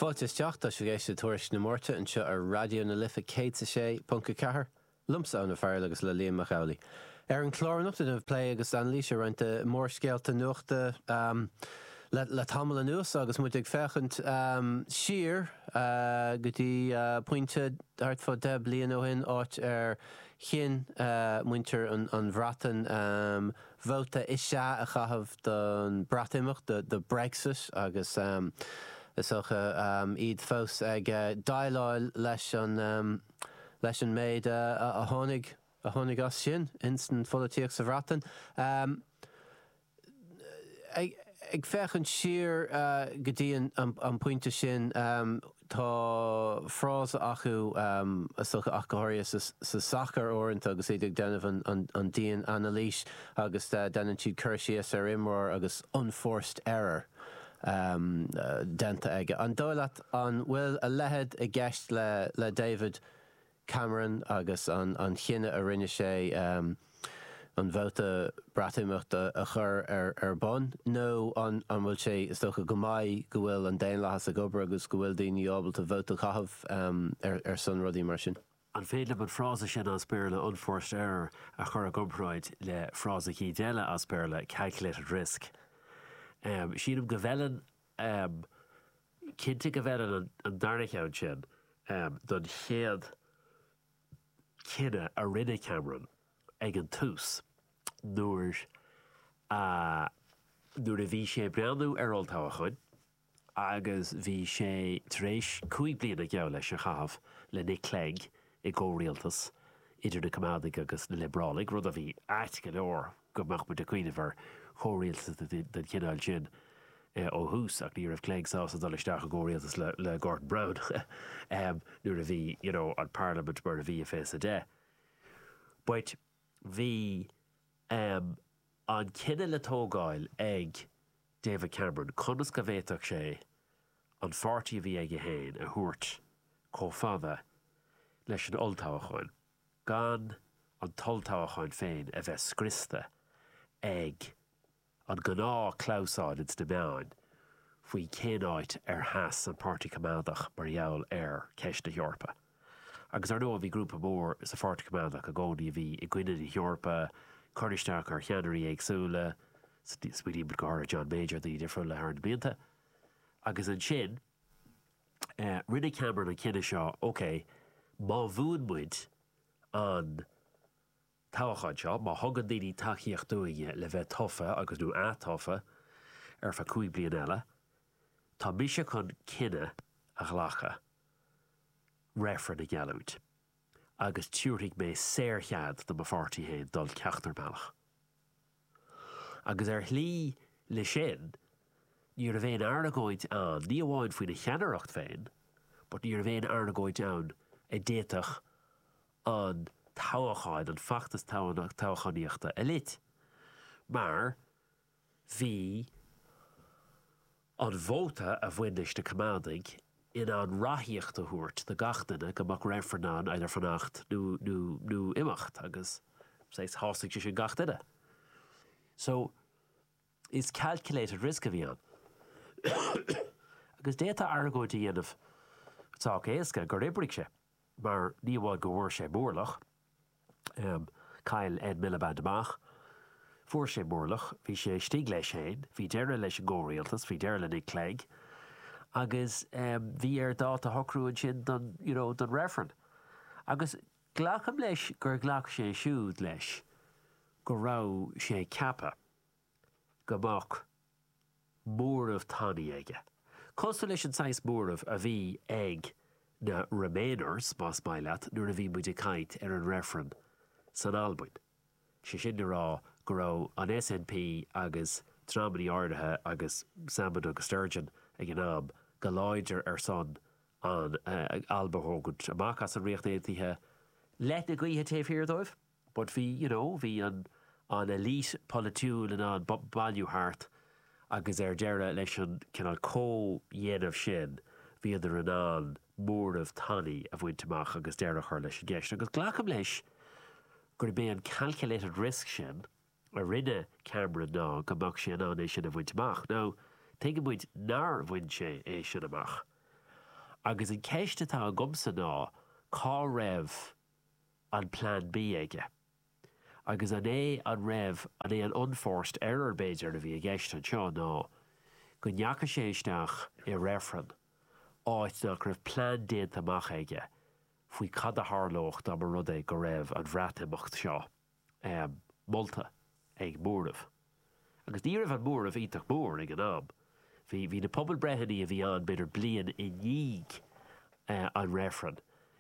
Fáilte isteach, tá sibh ag éisteacht le Tuairisc na Máirte anseo ar Raidió na Life 106.4, liomsa Eoin Ó Fearghail agus le Liam Mac Amhlaigh. Ar an chlár anocht déanfaimid plé agus anailís ar roinnt mórscéalta nuachta le tamall anuas agus muid ag féachaint siar go dtí pointe thart fá deich bliana ó shin, áit ar chinn muintir an Bhreatain, Vóta is sea a chaitheamh don Breatimeacht, do Brexit, agus is dócha iad fós ag déileáil leis an leis an méid a tháinig a tháinig as sin ins an pholaitíocht sa Bhreatain. Ag féachaint siar go dtí an pointe sin, Tá frása acu, is dócha ach go háirithe sa sacar uaireanta agus iad ag déanamh an dian anailís agus déanann siad cur síos ar imreoir agus unforced error déanta aige. An dóigh leat an bhfuil a leithéid i gceist le David? Cameron agus an cinneadh a rinne sé an vóta Breatimeachta a chur ar bun? Nó an bhfuil sé, is dócha go mbeidh, go bhfuil an daonlathas ag obair agus go bhfuil daoine ábalta vóta a chaitheamh ar son rudaí mar sin? An féidir liom an frása sin as Béarla 'unforced error' a chur i gcomparáid le frása cineál eile as Béarla 'calculated risk'? Sílim go bhfeileann am, cinnte go bhfeileann an darna ceann sin don chéad cinneadh a rinne Cameron ag an tús nuair a nuair a bhí sé ag breathnú ar olltoghchán agus bhí sé tar éis cúig bliana geall leis a chaitheamh le Nick Clegg i gcomhrialtas idir na Coimeádaigh agus na Liobrálaigh, rud a bhí ait go leor go mbeadh muid ag cuimhneamh ar chomhrialtas den chineál sin ó thús ach ní raibh Clegg sásta dul isteach i gcomhrialtas le Gordon Brown nuair a bhí you know an parlaimint mar a bhí i fiche is a deich but bhí um an cinneadh le tógáil ag David Cameron conas go bhféadfadh sé an páirtí a bhí aige féin a thabhairt chomh fada leis an olltoghchán. gan an t-olltoghchán féin a bheith scriosta ag an gnáth clamhsán ins na meáin faoi cén áit ar sheas an Páirtí Coimeádach mar gheall ar cheist na hEorpa. Agus ar ndóigh bhí grúpa mór sa Pháirtí Coimeádach i gcónaí a bhí i gcoinne na hEorpa, ag cur isteach ar cheannairí éagsúla, smaoinímid go háirithe ar John Major, daoine difriúla thar na blianta. Agus ansin. Rinne Cameron an cinneadh seo, OK, má bhuann muid an toghchán seo, má thugann daoine tacaíocht dúinne le bheith tofa agus, nó ath-tofa ar feadh cúig bliana eile, tá mise chun cinneadh a ghlacadh reifreann a gheallúint agus tabharfaidh mé saor-chead do mo pháirtí féin dul ceachtar bealach. agus ar shlí leis sin ní raibh aon argóint ann, ní amháin faoina cheannaireacht féin, but ní raibh aon argóint ann a d'fhéadfadh an toghchán, an feachtas toghchánaíochta a lot, mar bhí. An vóta a bhain leis na Coimeádaigh in ann ráthaíocht a thabhairt do gach duine go mbeadh reifreann ann idir fanacht nó imeacht agus shásaigh sé sin gach duine. So, is calculated risk a bhí ann. Agus d'fhéadfá argóint a dhéanamh sách éasca gur oibrigh sé. mar ní amháin go bhfuair sé mórlach, chaill Ed Miliband amach, fuair sé mórlach, bhí sé istigh leis féin, bhí deireadh leis an gcomhrialtas, bhí deireadh le Nick Clegg agus bhí air dáta a shocrú ansin don you know don reifreann. Agus glacaim leis gur ghlac sé siúd leis go raibh sé ceaptha. go mbeadh móramh tanaí aige. Cosúil leis an saghas móramh a bhí ag na Remainers, más maith leat, nuair a bhí muid ag caint ar an reifreann san Albain. Sé sin le rá go raibh an SNP agus dreamanna áirithe agus Salmond agus Sturgeon ag an am go láidir ar son an Alba a thógaint amach as an Ríocht Aontaithe leoithne gaoithe taobh thiar dóibh. But bhí, you know, bhí an an elite polaitiúil in ann bailiú thart agus ar deireadh leis an cineál comhdhéanamh sin bhíodar in ann móramh tanaí a bhaint amach agus deireadh a chur leis an gceist. Agus glacaim leis gurb é an calculated risk sin a rinne Cameron ná go mbeadh sé in ann é sin a bhaint amach. Now, tuigeann muid nár bhain sé é sin amach. Agus an ceist atá agamsa ná cá raibh an plean B aige? Agus an é an raibh an é an unforced error b'fhéidir a bhí i gceist anseo ná go ndeachaigh sé isteach i reifreann áit nach raibh plean déanta amach aige faoi cad a tharlódh dá mba rud é go raibh an Bhreatimeacht seo molta ag móramh. Agus ní raibh an móramh iontach mór ag an am. Bhí, bhí na pobalbreitheanna a bhí ann b'fhéidir bliain i ndiaidh an reifreann,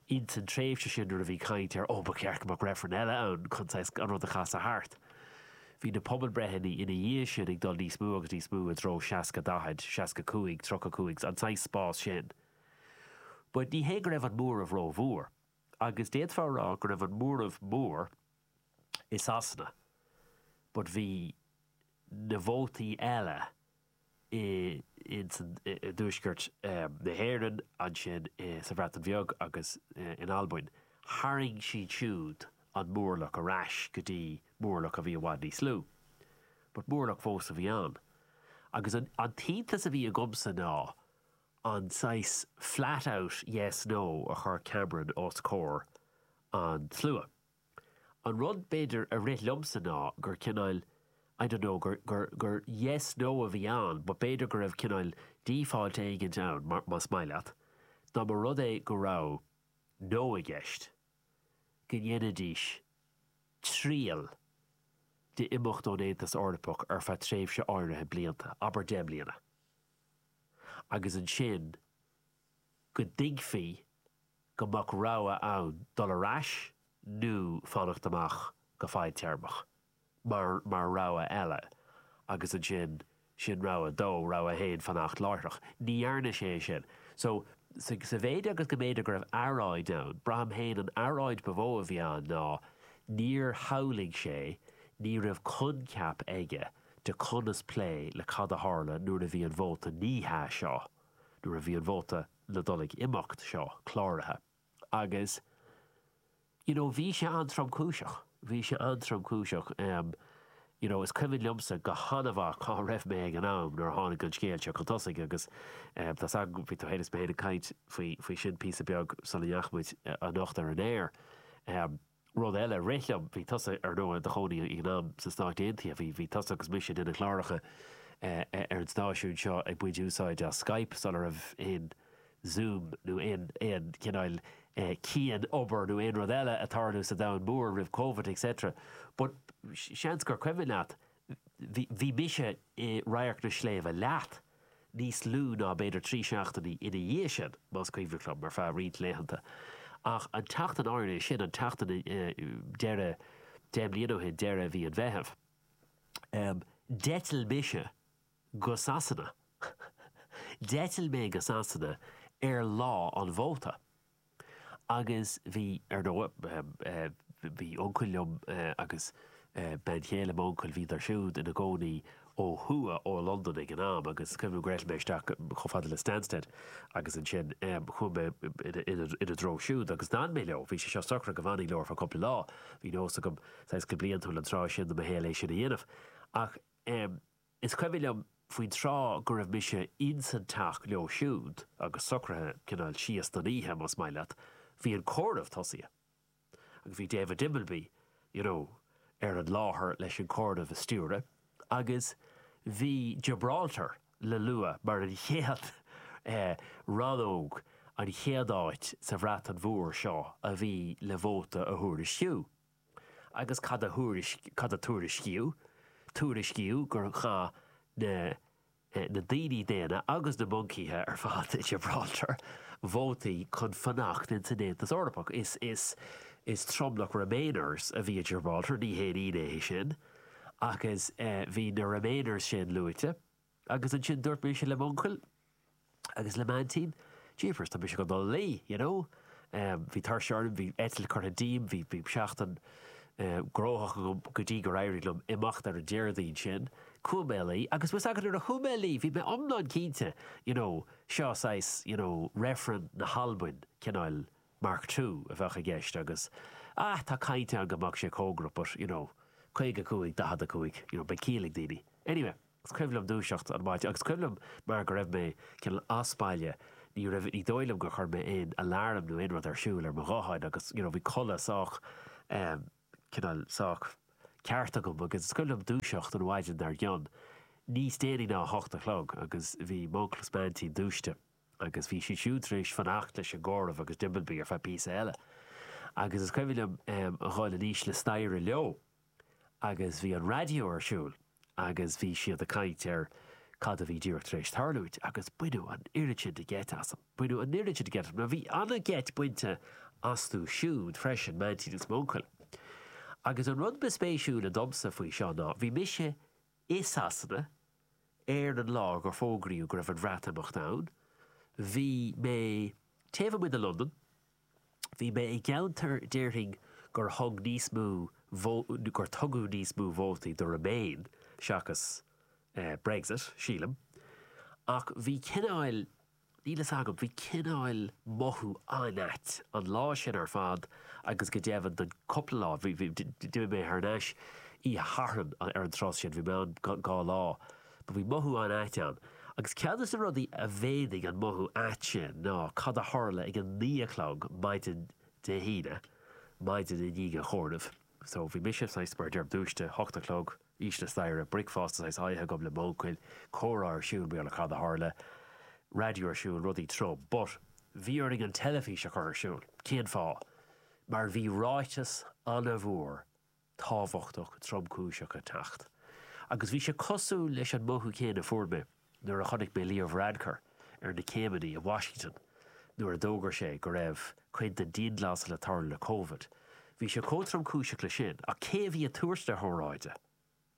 ins an tréimhse sin nuair a bhí caint ar oh ba cheart go mbeadh reifreann eile ann chun saghas an rud a chasadh thart. Bhí na pobalbreitheanna ina dhiaidh sin ag dul níos mó agus níos mó i dtreo seasca daichead, seasca cúig, tríocha cúig, an saghas spás sin. But ní hé go raibh an móramh rómhór. agus d'fhéadfá a rá go raibh an móramh mór i Sasana but bhí na vótaí eile i dtuaisceart na hÉireann, ansin sa Bhreatain Bheag agus in Albain, tharraing siad siúd an mórlach ar ais go dtí mórlach a bhí i bhfad níos lú but mórlach fós a bhí ann agus an t-iontas a bhí agamsa ná an saghas flat out yes, no a chuir Cameron os comhair an tslua. An rud b'fhéidir a rith liomsa ná gur cineáil I don't know gur yes, no a bhí ann but b'fhéidir go raibh cineáil default éigint ann, más maith leat, dá mba rud é go raibh no i gceist, go ndéanfaidís triail d'imeacht ón Aontas Eorpach ar feadh tréimhse áirithe blianta, abair deich mbliana. agus ansin go dtuigfí go mbeadh rogha ann dul ar ais nó fanacht amuigh go fadtéarmach mar mar rogha eile agus ansin sin rogha a dó, rogha a haon fanacht láithreach. Ní dhearna sé é sin. So, sa mhéid agus go mb'fhéidir go raibh earráid ann, braithim féin an earráid ba mhó a bhí ann ná níor shamhlaigh sé, ní raibh coincheap aige, de conas plé le cad a tharla nuair a bhí an vóta 'ní hea' seo, nuair a bhí an vóta ná dul ag imeacht seo cláraithe. Agus, you know, bhí sé an-tromchúiseach. Bhí sé an-tromchúiseach. You know, is cuimhin liomsa go han-mhaith cá raibh mé ag an am nuair a tháinig an scéal seo chun tosaigh agus tá's agam, bhí tú fhéin is mé fhéin ag caint faoi sin píosa beag sula ndeachaigh muid anocht ar an aer. Rud eile, rith liom, bhí tusa, ar ndóigh, i do chónaí ag an am sna Stáit Aontaithe, bhí, bhí tusa agus mise ag déanamh cláracha ar an stáisiún seo ag baint úsáid as Skype sula raibh aon Zoom nó aon, aon chineál cianobair nó aon rud eile ag tarlú sa domhan mór roimh Covid et cetera but seans gur cuimhin leat, bhí, bhí mise i Radharc na Sléibhte leat. níos lú ná b'fhéidir trí seachtainí ina dhiaidh sin, más cuimhin liom, ar feadh roinnt laethanta. Ach an tseachtain áirithe sin, an tseachtain deireadh, deich mbliana ó shin, deireadh mhí an Mheithimh, d'eitil mise go Sasana, d'eitil mé go Sasana ar lá an vóta. Agus bhí, ar ndóigh. Bhí uncail liom agus bean chéile m'uncail, bhíodar siúd ina gcónaí ó thuaidh ó Londain ag an am agus is cuimhin liom go raibh mé isteach chomh fada le Stansted agus ansin chuaigh mé ina dtreo siúd agus d'fhan mé leo. Bhí sé seo socraithe go bhfanfainn leo ar feadh cúpla lá. Bhí nós agam, saghas go bliantúil an tráth sin de mo shaol é sin a dhéanamh. Ach. Is cuimhin liom faoin tráth go raibh mise ins an teach leo siúd agus socraithe cineál síos don oíche, más maith leat, bhí an comhaireamh tosaithe. Agus bhí David Dimbleby, you know, ar an láthair leis an comhaireamh a stiúradh agus bhí Gibraltar le lua mar an chéad eh, rannóg, an chéad áit sa Bhreatain Mhór seo a bhí le vóta a thuairisciú. agus cad cad a tuairiscíodh? Tuairiscíodh gur chaith na na daoine daonna agus na moncaithe ar fad i Gibraltar vótaí chun fanacht ins an Aontas Eorpach. Is is tromlach Remainers a bhí i Gibraltar, ní haon ionadh é sin, agus bhí na Remainers sin luaite. Agus ansin dúirt mise le m'uncail agus le m'aintín, jeepers, tá mise chun dul a luí, you know. Bhí tuirse orm, bhí eitilt curtha díom, bhí seachtain gnóthach agam go dtí gur éirigh liom imeacht ar an Déardaoin sin. Chuaigh mé a luí. Agus bhfuil 's agat, nuair a chuaigh mé a luí, bhí mé iomlán cinnte, you know, seo saghas, you know, reifreann na hAlbain, cineál mark two a bheadh i gceist agus, ah, tá caint ann go mbeadh sé comhgarach but, you know, 55, 45, you know, beidh ciall ag daoine. Anyway. Is cuimhin liom dúiseacht an maidin agus is cuimhin liom mar go raibh mé cineál as baile, ní raibh, ní dóigh liom gur chuir mé aon alarm nó aon rud ar siúl ar mo ghuthán agus you know bhí codladh sách ehm cineál sách ceart agam agus is cuimhin liom dúiseacht an mhaidin dar gcionn, níos déanaí ná a hocht a chlog agus bhí m'uncail is m'aintín dúisithe agus bhí siad siúd tar éis fanacht leis an gcomhaireamh agus Dimbleby ar feadh píosa eile agus is cuimhin liom ehm a dhul anuas na staighre leo. agus bhí an raidió ar siúl agus bhí siad ag caint ar cad a bhí díreach tar éis tarlúint agus baineadh an oiread sin de gheit asam, baineadh an oiread sin de gheit asam mar bhí an-gheit bainte astu siúd freisin, m'aintín is m'uncail. Agus an rud ba spéisiúla domsa faoi seo ná bhí mise i Sasana ar an lá gur fógraíodh go raibh an Bhreatimeacht ann, bhí mé taobh amuigh de Londain, Bhí mé i gceantar déarfainn gur thug níos mó gur tugadh níos mó vótaí do Remain seachas Brexit, sílim. Ach bhí cineáil, níl fhios agam, bhí cineáil mothú an-ait an lá sin ar fad agus go deimhin don cúpla lá, d'imigh mé thar n-ais oíche Sathairn ar an tráth sin, bhí mé ann dhá lá. Do bhí mothú an-ait ann. Agus ceann de na rudaí a mhéadaigh an mothú ait sin ná cad a tharla ag a naoi a chlog maidin Dé hAoine, maidin i ndiaidh an chomhairimh. So, bhí mise, saghas, mar a deirim, dúiste, hocht a chlog, thíos staighre, bricfeasta, saghas, á ithe agam le m'uncail, comhrá ar siúl, bhuel, cad a tharla, raidió ar siúl, rudaí troma. But, bhí orainn an teilifís a chur ar siúl. Cén fáth? Mar bhí ráiteas an-mhór tábhachtach tromchúiseach ag teacht agus bhí sé cosúil leis an mothú céanna a fuair mé nuair a chonaic mé Leo Varadkar ar na céimeanna i Washington nuair a d'fhógair sé go raibh an chéad dianghlasáil le tarlú le Covid. Bhí sé chomh tromchúiseach leis sin ach cé a bhí ag tabhairt na hóráide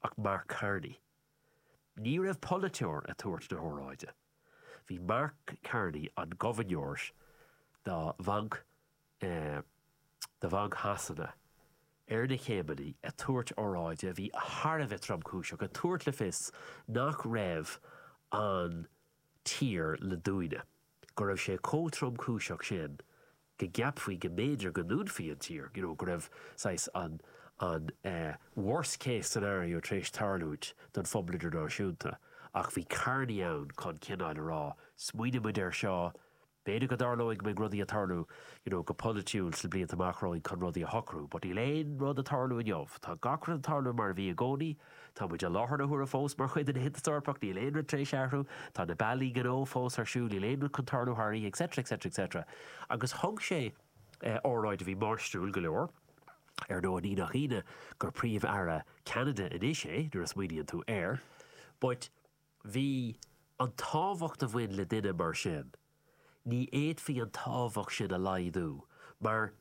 ach Mark Carney. Ní raibh polaiteoir ag tabhairt na hóráide. Bhí Mark Carney, an gobharnóir do Bhanc do Bhanc Shasana, ar na céimeanna ag tabhairt óráide a bhí thar a bheith tromchúiseach, ag tabhairt le fios nach raibh an tír le dúnadh, go raibh sé chomh tromchúiseach sin go gceapfaí go mb'fhéidir go ndúnfaí an tír, you know go raibh saghas an an eh worst case scenario tar éis tarlúint don phobal idirnáisiúnta ach bhí Carney ann chun cineáil a rá smaoinigh muid air seo, b'fhéidir go dtarlódh, go mbeidh rudaí ag tarlú you know go polaitiúil sna blianta amach romhainn chun rudaí a shocrú but níl aon rud ag tarlú inniu, tá gach rud ag tarlú mar a bhí i gcónaí, Tá muid i láthair na huaire fós mar chuid den Aontas Eorpach, níl aon rud tar éis athrú, tá na bealaí gnó fós ar siúl, níl aon rud chun tarlú thar oíche, etc. etc. etc. Agus thug sé óráid a bhí máistriúil go leor. Ar ndóigh, ní nach ionadh gur Príomh-Aire Cheanada anois é, nuair a smaoiníonn tú air. But. Bhí an tábhacht a bhain le duine mar sin, ní fhéadfaí an tábhacht sin a laghdú mar,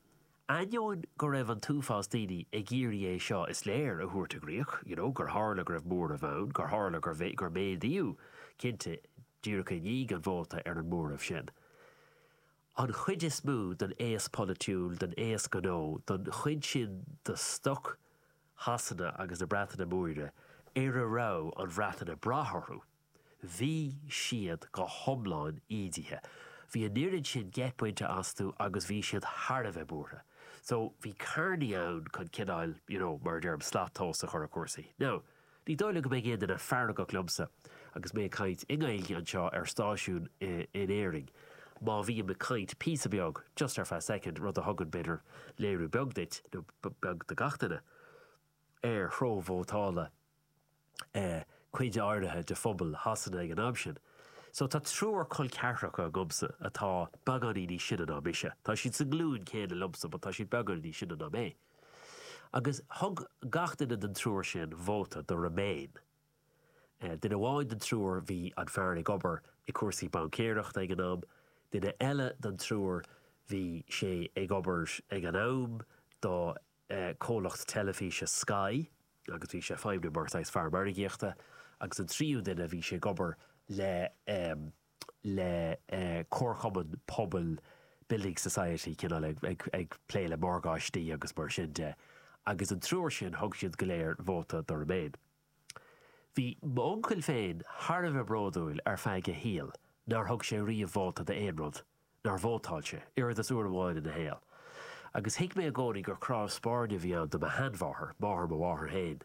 ainneoin go raibh an t-uafás daoine ag iarraidh é seo, is léir, a thabhairt i gcrích, you know gur tharla go raibh móramh ann, gur tharla gur méadaíodh, cinnte, díreach i ndiaidh an vóta, ar an móramh sin. An chuid is mó den aos polaitiúil, den aos gnó, den chuid sin de stoc Shasana agus na Breataine Móire ar a raibh an Bhreatain ag brath orthu, bhí siad go hiomlán ídithe. Bhí an fhoireann sin deich bpointe astu agus bhí siad thar a bheith buartha. So, bhí Carney ann chun cineáil, you know, mar a deirim, slat tomhais a chur ar chúrsaí. Now, Ní dóigh liom go mbeidh aon duine feargach liomsa agus mé ag caint i nGaeilge anseo ar stáisiún in Éirinn. Má bhím ag caint píosa beag, just ar feadh soicind, rud a thugann, b'fhéidir, léiriú beag duit, nó beag do gach duine, ar threo vótála cuid áirithe de phobal Shasana ag an am sin. So, tá triúr col ceathracha agamsa atá beagáinín níos sine ná mise. Tá siad sa nglúin chéanna liomsa but tá siad beagáinín níos sine ná mé. Agus thug gach duine den triúr sin vóta do Remain. Duine amháin den triúr, bhí an fear ag obair i cúrsaí baincéireachta ag an am, duine eile den triúr, bhí sé ag obair ag an am do comhlacht teilifíse Sky agus bhí sé ag feidhmniú mar saghas fear margaíochta agus an tríú duine, bhí sé ag obair le le comharchumann pobail, building society, cineál ag plé le morgáistí agus mar sin de. Agus an triúr sin, thug siad go léir vóta do Remain. Bhí m'uncail féin thar a bheith bródúil ar feadh a shaoil nár thug sé riamh vóta d'aon rud nár vótáil sé, oiread is uair amháin ina shaol. Agus thuig mé i gcónaí gur cnámh spairne a bhí ann do mo sheanmháthair, máthair mo mháthar féin,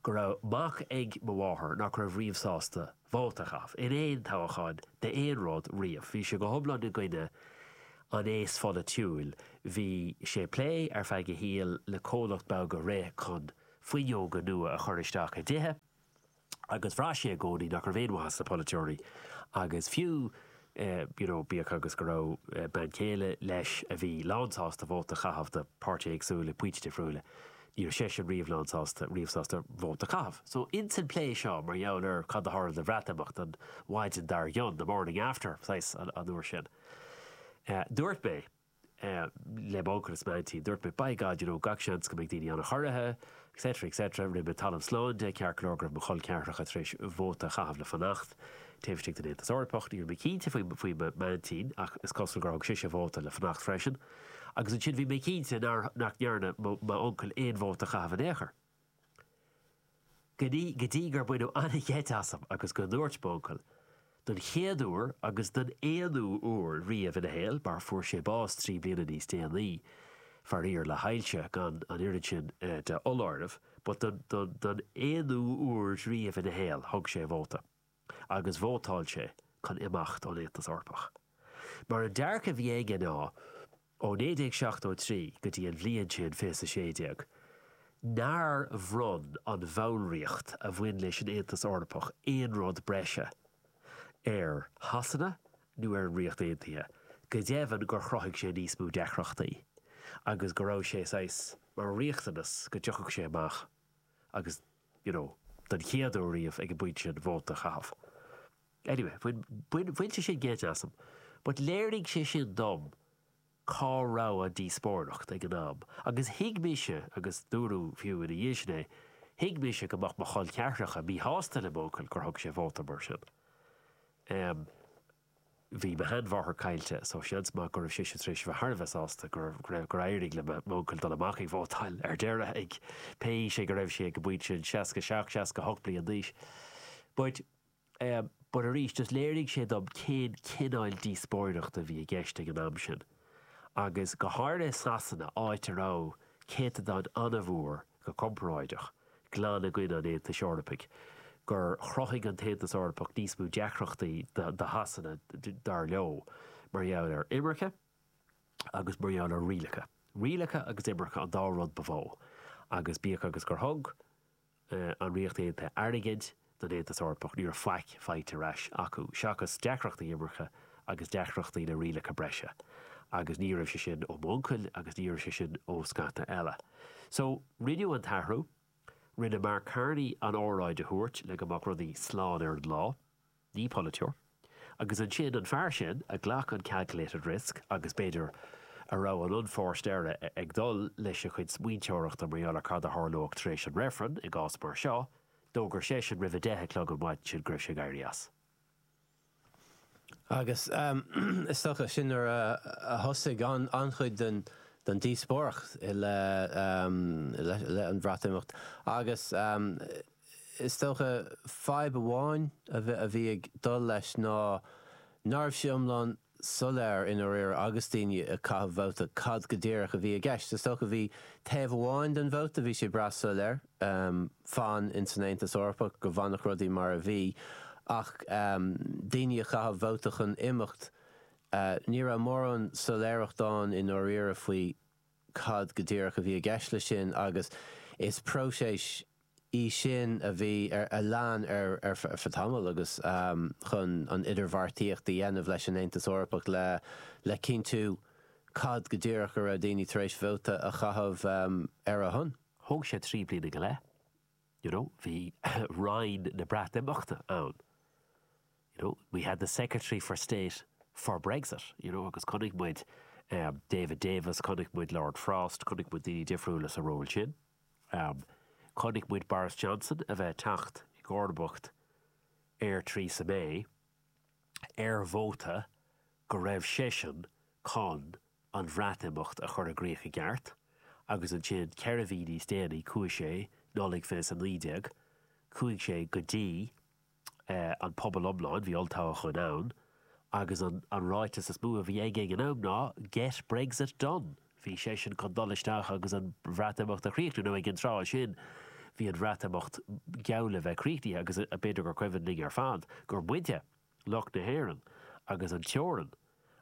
go raibh mac ag mo mháthair nach raibh riamh sásta vóta a chaitheamh, in aon toghchán, d'aon rud, riamh. Bhí sé go hiomlán i gcoinne an aos pholaitiúil. Bhí sé ag plé, ar feadh a shaoil, le comhlacht beag a rith chun fuinneoga nua a chur isteach i dtithe. agus bhraith sé i gcónaí nach raibh aon mhaith as na polaiteoirí agus fiú you know bíodh agus go raibh bean chéile leis a bhí lánsásta vóta a chaitheamh do páirtithe éagsúla ag pointí difriúla ní raibh seisean riamh lánsásta riamh sásta vóta a chaitheamh. So insan phlé seo mar gheall ar cad a tharla don Bhreatimeacht an mhaidin dár gcionn, the morning after, saghas, an uair sin, dúirt mé. le m'uncail is m'aintín dúirt mé by God you know gach seans go mbeadh daoine an-chorraithe etc etc rinne mé talamh slán de ceart go leor go raibh mo chol ceathracha tar éis vóta a chaitheamh le fanacht taobh istigh den Aontas Eorpach ní raibh mé cinnte faoi faoi m'aintín ach is cosúil gur thug sise vóta le fanacht freisin agus ansin bhí mé cinnte nár nach ndearna m'uncail aon vóta a chaitheamh in aon chor. Go dtí gur baineadh an-gheit asam agus go ndúirt m'uncail, don chéad uair agus don aonú uair riamh ina shaol, mar fuair sé bás trí bliana níos déanaí, faraor, le hailse, gan an oiread sin de fholáireamh, but don aonú uair riamh ina shaol, thug sé a vóta. agus vótáil sé chun imeacht ón Aontas Eorpach. Mar an dearcadh a bhí aige ná, ó 1973 go dtí an bhliain sin, 2016, nár bhronn an bhallraíocht a bhain leis an Aontas Eorpach aon rud breise ar Shasana nó ar an Ríocht Aontaithe, go deimhin gur chruthaigh sé níos mó deacrachtaí agus go raibh sé saghas mar riachtanas go dtiocfadh sé amach agus. you know, don chéad uair riamh ag an bpointe sin vóta a chaitheamh. Anyway, bhain, bhain sé sin geit asam. But léirigh sé sin dom cá raibh an díospóireacht ag an am agus thuig mise, agus dúradh fiú ina dhiaidh sin é, thuig mise go mbeadh mo chol ceathracha míshásta le m'uncail gur thug sé vóta mar sin. Em. Bhí mo shean mháthair caillte so seans maith go raibh sise tar éis a bheith thar a bheith sásta gur éirigh le m'uncail dul amach ag vótáil ar deireadh ag, pé aois é go raibh sé ag an bpointe sin, 67, 68 bliain d'aois. But eh, but arís just léirigh sé dom cén cineáil díospóireachta a bhí i gceist ag an am sin. agus go háirithe i Sasana, áit a raibh céatadán an-mhór, go comparáideach, glan i gcoinne an Aontais Eorpaigh, gur chruthaigh an tAontas Eorpach níos mó deacrachtaí do Shasana, dar leo, mar gheall ar imirce agus mar gheall ar rialacha. Rialacha agus imirce an dá rud ba mhó, agus bíodh agus gur thug, an Ríocht Aontaithe airgead don Aontas Eorpach, ní raibh faic faighte ar ais acu, seachas deacrachtaí imirce agus deacrachtaí le rialacha breise. Agus ní raibh sé sin ó m'uncail agus ní raibh sé sin ó scata eile. So, rinneadh an t-athrú. Rinne Mark Carney an óráid a thabhairt le go mbeadh rudaí slán ar an lá. Ní polaiteoir. Agus ansin an fear sin a ghlac an calculated risk agus, b'fhéidir, a raibh an onus air ag dul leis a chuid smaointeoireacht mar gheall ar cad a tharlódh tar éis an reifrinn i gcás mar seo, d'fhógair seisean roimh a deich a chlog an mhaidin sin go raibh sé ag éirí as. Agus is dócha sin nuair a thosaigh an-chuid den díospóireacht i leith an Bhreatimeacht. Agus. Is dócha, fadhb amháin a bhí ag dul leis ná ná raibh sé iomlán soiléir i ndáiríre agus daoine ag caitheamh vóta cad go díreach a bhí i gceist. Is dócha bhí taobh amháin den vóta, bhí sé breá soiléir, fan insan Aontas Eorpach, go bhfanfadh rudaí mar a bhí ach daoine ag caitheamh vóta chun imeacht, ní raibh mórán soiléireacht ann i ndáiríre faoi. cad go díreach a bhí i gceist leis sin agus is próiseas í sin a bhí ar a lean ar feadh tamaill agus chun an idirbheartaíocht a dhéanamh leis an Aontas Eorpach le le cinntiú cad go díreach a raibh daoine tar éis vóta a chaitheamh ar a shon. Thóg sé trí bliana go leith. you know bhí Roinn na Breatimeachta ann you know we had the Secretary of State for Brexit you know agus chonaic muid um David Davis chonaic muid Lord Frost chonaic muid daoine difriúla sa ról sin um chonaic muid Boris Johnson a bheith teacht i gcomharbacht ar Theresa May ar vóta go raibh seisean chun an Bhreatimeacht a chur i gcrích i gceart agus ansin ceithre mhí níos déanaí chuaigh sé, Nollaig 2019, chuaigh sé go dtí an pobal iomlán, bhí olltoghchán ann agus an ráiteas is mó a bhí aige ag an am ná Get Brexit Done! Bhí seisean chun dul isteach agus an Bhreatimeacht a chríochnú nó ag an tráth sin bhí an Bhreatimeacht geall le bheith críochnaithe agus b'fhéidir gur cuimhin linn ar fad gur muide, lucht na hÉireann, agus an teorainn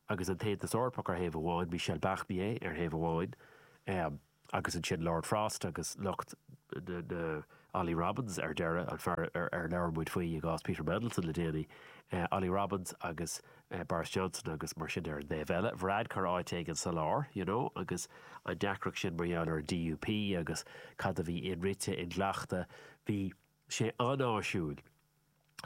agus an tAontas Eorpach ar thaobh amháin, Michel Barnier ar thaobh amháin agus ansin Lord Frost agus lucht na. Ollie Robins ar deireadh, an fear ar labhair muid faoi i gcás Peter Mandelson le déanaí. Ollie Robins agus Boris Johnson agus mar sin ar an dtaobh eile. Varadkar áit éigin sa lár, you know, agus an deacracht sin mar gheall ar an DUP agus cad a bhí inrite, inghlachta. Bhí sé an-áisiúil.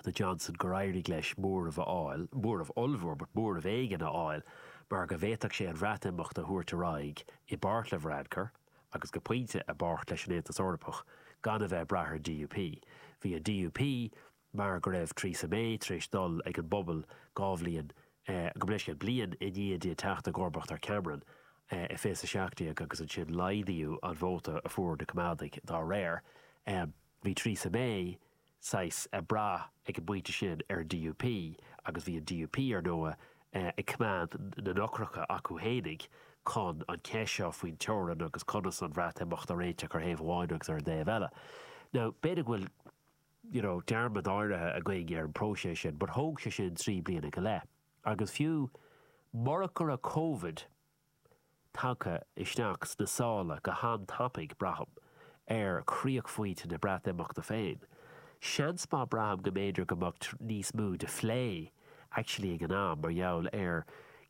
do Johnson gur éirigh leis móramh a fháil, móramh ollmhór, but móramh éigin a fháil mar go bhféadfadh sé an Bhreatimeacht a thabhairt ar aghaidh i bpáirt le Varadkar agus go pointe i bpáirt leis an Aontas Eorpach gan a bheith ag brath ar an DUP. Bhí an DUP mar go raibh Theresa May tar éis dul ag an bpobal dhá bhliain, gabh mo leithscéal, bliain i ndiaidh di teacht i gcomharbacht ar Cameron i fiche 17 agus ansin laghdaíodh an vóta a fuair na Coimeádaigh dá réir. Bhí Theresa May. saghas brath ag an bpointe sin ar an DUP agus bhí an DUP, ar ndóigh, ag coimeád na n-eochracha acu fhéinig chun an cheist seo faoin teorainn agus conas an Bhreatimeacht a réiteach ar thaobh amháin agus ar an dtaobh eile. Now, b'fhéidir go bhfuil you know dearmad áirithe againn ar an bpróiseas sin but thóg sé sin trí bliana go leith agus fiú murach go raibh Covid, tagtha isteach sna sála go han-tapaidh, braithim, ar chríochphointe na Breatimeachta féin. Seans maith braithim go mb'fhéidir go mbeadh níos mó de phlé actually ag an am mar gheall ar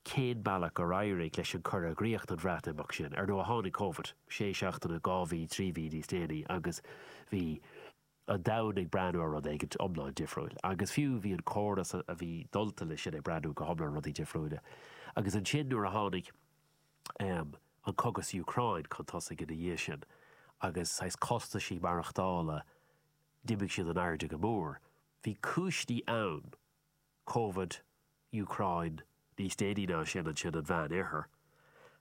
cén bealach gur éirigh leis an cur i gcríoch don Bhreatimeacht sin. Ar ndóigh tháinig Covid sé seachtaine, dhá mhí, trí mhí níos déanaí agus bhí. an domhain ag breathnú ar rud éigint iomlán difriúil agus fiú bhí an córas a bhí dulta leis sin ag breathnú go hiomlán rudaí difriúila agus ansin nuair a tháinig an cogadh sa Úcráin chun tosaigh ina dhiaidh sin agus saghas costaisí maireachtála d'imigh siad in airde go mór. Bhí cúiseanna ann, Covid, Úcráin, níos déanaí ná sin ansin an Mheánoirthear,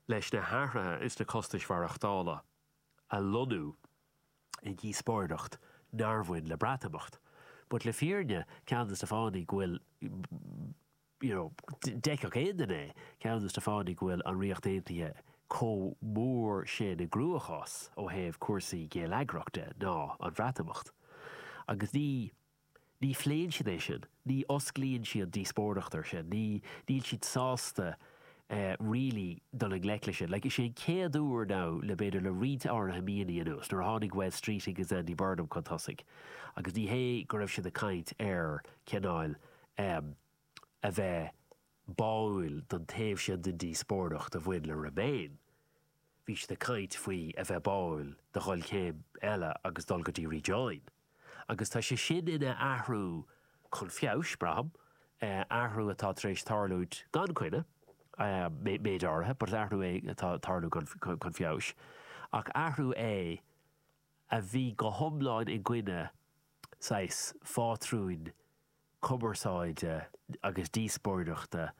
leis na hathruithe is na costais mhaireachtála a lonnú i ndíospóireacht nár bhain le Breatimeacht. But le fírinne, ceann des na fáthanna go bhfuil, you know, d'fheicfeadh aon duine é, ceann des na fáthanna go bhfuil an Ríocht Aontaithe chomh mór sin i gcruachás ó thaobh cúrsaí géilleagrachta ná an Bhreatimeacht. Agus ní. Ní phléann siad é sin, ní osclaíonn siad díospóireacht air sin, ní, níl siad sásta really dul i ngleic leis sin. Like, is é an chéad uair now le b'fhéidir le roinnt áirithe míonna anuas nuair a tháinig Wes Streeting agus Andy Burnham chun tosaigh agus ní hé go raibh siad ag caint ar cineál ehm a bheith báúil don taobh sin den díospóireacht a bhain le Remain Bhí siad ag caint faoi a bheith báúil do dhul céim eile agus dul go dtí Rejoin agus tá sé sin ina athrú chun feabhais, braithim, athrú atá tar éis tarlú gan coinne, méid áirithe, but athrú é atá ag tarlú chun feabhais, ach athrú é a bhí go hiomlán i gcoinne, saghas, phátrúin cumarsáide agus díospóireachta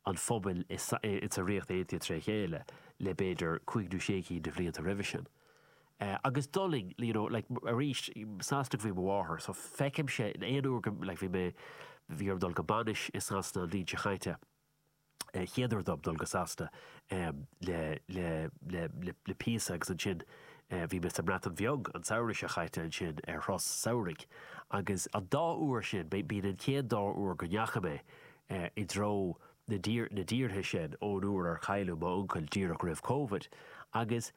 an phobail i sa Ríocht Aontaithe tré chéile le b'fhéidir cúig nó sé cinn de bhlianta roimhe sin. Agus d'fhulaing you know like arís Sasanach ab í mo mháthair so feicimse in aon uair go like bhí mé bhí orm dul go bainis i Sasana an bhliain seo chaite, chéad uair dom dul go Sasana le píosa agus ansin bhí mé sa mBreatain Bheag an samhradh seo chaite ansin ar thuras samhraidh agus an dá uair sin, b'in an chéad dá uair go ndeachaigh mé i dtreo na dtíortha sin ón uair ar cailleadh m'uncail díreach roimh Covid agus.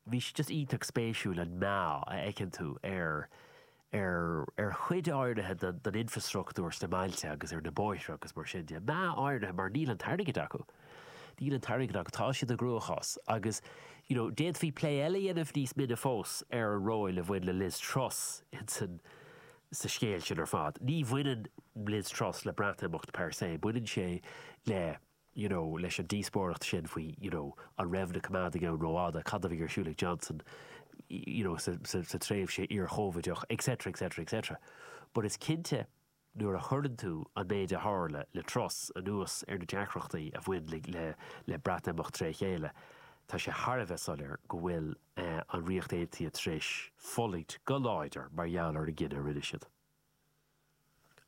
bhí sé just iontach spéisiúil an meath a fheiceann tú ar ar ar chuid áirithe den den infrastructúr sna mbailte agus ar na bóithre agus mar sin de. Meath áirithe mar níl an t-airgead acu. Níl an t-airgead acu. Tá siad i gcruachás agus you know d'fhéadfaí plé eile a dhéanamh níos mine fós ar an ról a bhain le Liz Truss insan sa scéal sin ar fad. Ní bhaineann Liz Truss le Breatimeacht per se, baineann sé le you know leis an díospóireacht sin faoi you know an raibh na coimeádaigh ann rófhada, cad a bhí ar siúl ag Johnson you know sa tréimhse iarChóivideach etc etc etc but is cinnte nuair a chuireann tú an méid a tharla le Truss anuas ar na deacrachtaí a bhain le le Breatimeacht tré chéile tá sé thar a bheith soiléir go bhfuil an Ríocht Aontaithe tar éis fulaingt go láidir mar gheall ar an gcinneadh a rinne siad.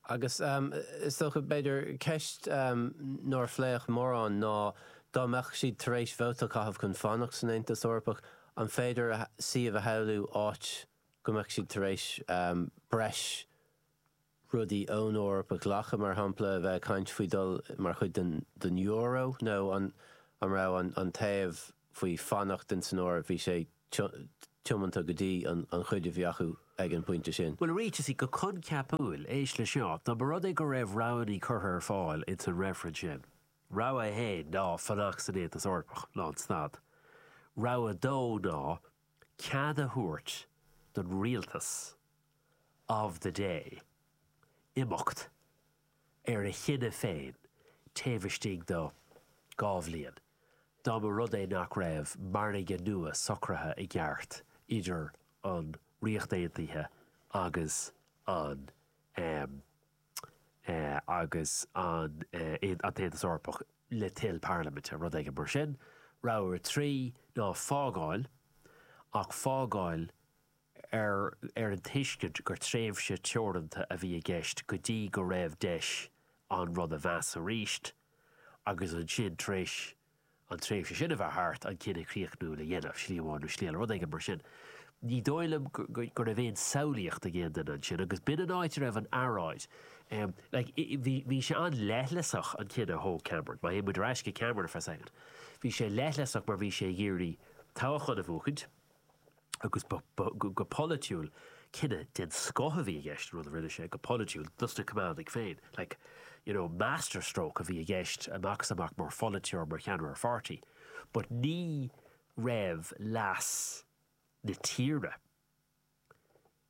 Agus is dócha, b'fhéidir, ceist nár phléadh mórán ná, dá mbeadh siad tar éis vóta a chaitheamh chun fanacht san Aontas Eorpach, an féidir suíomh a shamhlú áit go mbeadh siad tar éis breis rudaí ón Eoraip a ghlacadh, mar shampla, a bheith ag caint faoi dhul mar chuid den euro, nó an raibh an taobh faoi fanacht insan Eoraip, bhí sé tiomanta go dtí an chuid a bhí acu ag an bpointe sin. Bhuel, ráiteas í go coincheapúil, éist leis seo, dá mba rud é go raibh roghanna curtha ar fáil ins an reifreann sin. Rogha a haon ná fanacht san Aontas Eorpach, lánstad. Rogha a dó ná cead a thabhairt don rialtas of the day imeacht ar a chinneadh féin taobh istigh de dhá bhliain dá mba rud é nach raibh margadh nua socraithe i gceart idir an Ríocht Aontaithe agus an agus an tAontas Eorpach le toil parlaiminte, rud éigin mar sin. Rogha 3 ná fágáil, ach fágáil ar ar an tuiscint gur tréimhse teoranta a bhí i gceist go dtí go raibh deis an rud a mheas arís agus ansin tar éis an tréimhse sin a bheith thart an cinneadh críochnúil a dhéanamh, slí amháin nó slí eile, rud éigin mar sin. Ní dóigh liom go raibh aon samhlaíocht ag aon duine ansin agus b'in an áit a raibh an earráid. Bhí sé an-leithleasach an cinneadh a thóg Cameron, má théann muid ar ais go Cameron for a second, bhí sé leithleasach mar bhí sé ag iarraidh toghchán a bhuachaint, agus ba, ba, go polaitiúil, cinneadh den scoth a bhí i gceist, an rud a rinne sé, go polaitiúil, dos na Coimeádaigh féin, like, you know, master stroke a bhí i gceist amach is amach mar pholaiteoir, mar cheannaire pháirtí, but ní raibh leas na tíre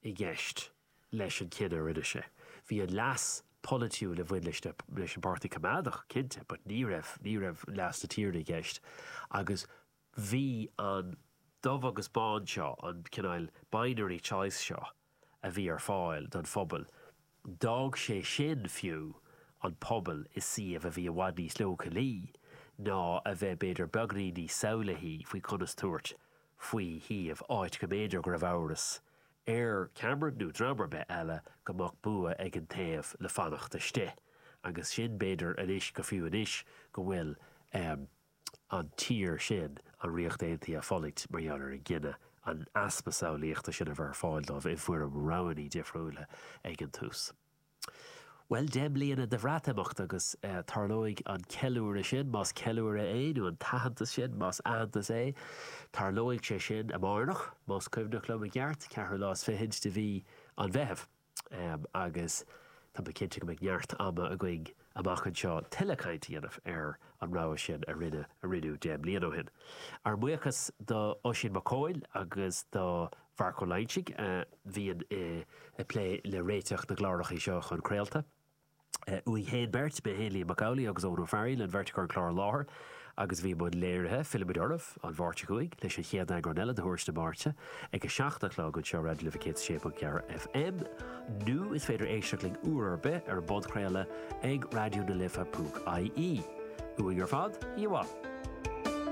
i gceist leis an gcinneadh a rinne sé. Bhí an leas polaitiúil a bhain leis na, leis an bPáirtí Coimeádach, cinnte, but ní raibh, ní raibh leas na tíre i gceist agus Bhí an dubh agus bán seo, an cineál binary choice seo a bhí ar fáil don phobal, d'fhág sé sin fiú an pobal i suíomh a bhí i bhfad níos leochailí ná a bheith b'fhéidir beagainín níos samhlaithí faoi conas tabhairt faoi shuíomh, áit go mb'fhéidir go raibh amhras ar Cameron nó dream ar bith eile go mbeadh bua ag an taobh le fanacht istigh agus sin b'fhéidir anois go fiú anois go bhfuil. an tír sin, an Ríocht Aontaithe, ag fulaingt mar gheall ar an gcinneadh an easpa samhlaíochta sin a bheith ar fáil dóibh i bhfoirm roghanna difriúla ag an tús. Bhuel, deich mbliana de Bhreatimeacht agus tarlóidh an ceiliúradh sin, más ceiliúradh é, nó an t-aitheantas sin, más aitheantas é, tarlóidh sé sin amárach, más cuimhin liom i gceart, ceathrú lá is fichid de mhí an Mheithimh. agus tá mé cinnte go mbeidh neart ama againn amach anseo tuilleadh caint a dhéanamh ar an rogha sin a rinneadh deich mbliana ó shin. Ár mbuíochas do Oisín McCoille agus do Mharc Ó Loingsigh a bhíonn ag plé le réiteach na gcláracha seo chun craolta. Uainn féin beirt, mé féin Liam Mac Amhlaigh agus Eoghan Ó Fearghail, an bheirt againn ar an chlár a láithriú agus bhí muid á léiriú. Fillfimid oraibh an Mháirt seo chugainn leis an chéad eagrán eile de Thuairisc na Máirte ag a seacht a chlog anseo Raidió na Life 106.4 FM nó is féidir éisteacht linn uair ar bith ar an bpodchraoladh ag raidionalife.ie. Uainn ar fad, oíche mhaith.